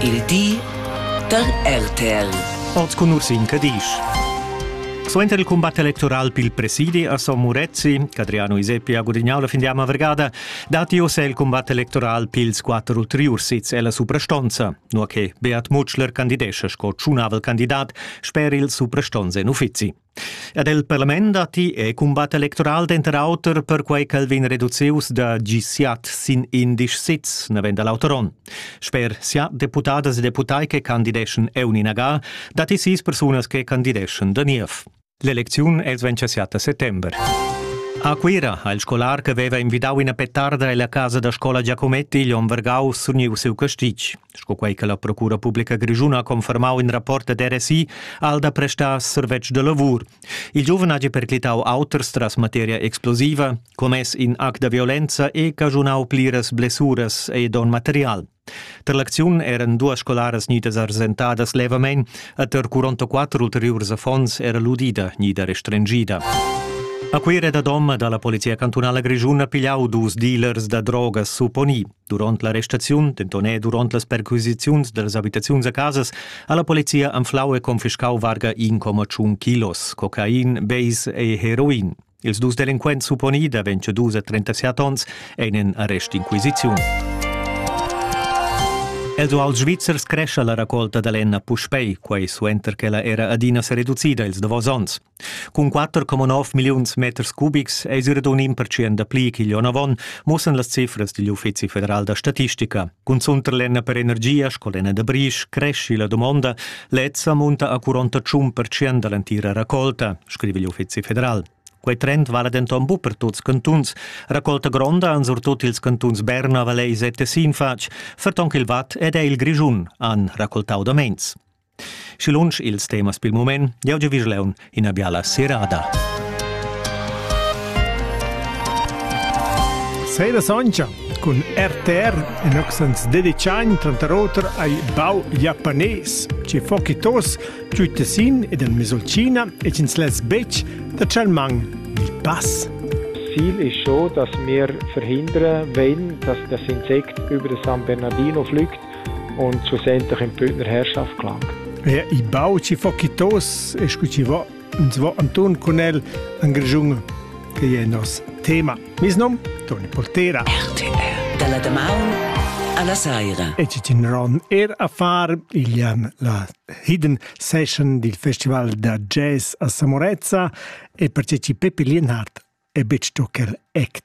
Il di da RTL. Oz cun Ursin Cadisch. Suenter il combat electoral pil presidi a Son Murezzi, Adriano Iseppi ha gudignau la findiama vergada. Dati ossa il combat electoral pils quatter ulteriurs sits ella suprastonza, nua che Beat Mutschler candidescha sco tschunavel candidat sper il suprastonz en uffizi. Ed el parlament datti e cumbat electoral denter auter perquei ch'el vegn reducius da gisiat sin indisch sits, navend l'auter onn. Sper sia deputadas e deputai che candideschan Euni Nagal, datti sis persunas che candideschan da niev. L'elecziun els vegn siat a settember. A Cuira ha il scolar che veva invidau ina petarda ella casa da scola Giacometti igl onn vargau surniu siu castig. Sco quei che la Procura publica grischuna ha confermau in rapport ad RSI, ha el da prestar survetsch de lavur. Il giuven hagi perclitau auters tras materia explosiva, commess in act da violenza e caschunau pliras blessuras e don material. Tar l'acziun eran duas scolaras gnidas arsentadas levamein e tar 44 ulteriurs affons era l'udida gnida restringida. A Cuira da Dom dalla Polizia cantunala grischuna pigliau dus dealers da drogas supponì. Duront la restaziun, denton e duront las perquisiziuns dallas habitaziuns a casas, ha la polizia anflau e confiscau varga 1,1 kilos cocain, beis e heroin. Ils dus delinquents supponi da 22 a 37 onns ein en arrestinquisiziun. Els uals svizzers crescha la raccolta da lenna puspei, quei suenter che la era adina sereducida ils davos onns. Cun 4,9 milliuns meters cubics eis era un impertschient da pli ch'igl onn avon, muossan las cifras digl Uffizi federal da statistica. Cunzunt per lenna per energia sco lenna da brisch cresci la domonda, lezza munta a 41 percent dall'entira raccolta, scrive igl Uffizi federal. Quei trend vala denton bu per tuts cantuns. Raccolta gronda han surtut ils cantuns Berna, Vallais e Tessin fatg, ferton ch'il Watt ed è il Grischun han raccoltau da meins. Schi lunsch ils temas pil mument, jau giu vis leun ina biala serada. Sera Soncha cun RTR en accents dedicai tranter oter ai bau japanes, ci fokitos, giu Tessin ed en Mesolcina e cins les bec da Chalmang il pass. Ziel ist schon, dass wir verhindern wollen, dass das Insekt über San Bernardino fliegt und so senter in pöner Herrschaft klang. Ja, i bau ci fo kitos e scu ci vo, uns vo Anton con el an Grjung che è nos tema. Mis nom Toni Portera. RTR dalla damaun alla saira. E ci ron er a far il an la hidden session del festival da jazz a Samorezza e perché ci Peppi Lienhardt è bec tocker act.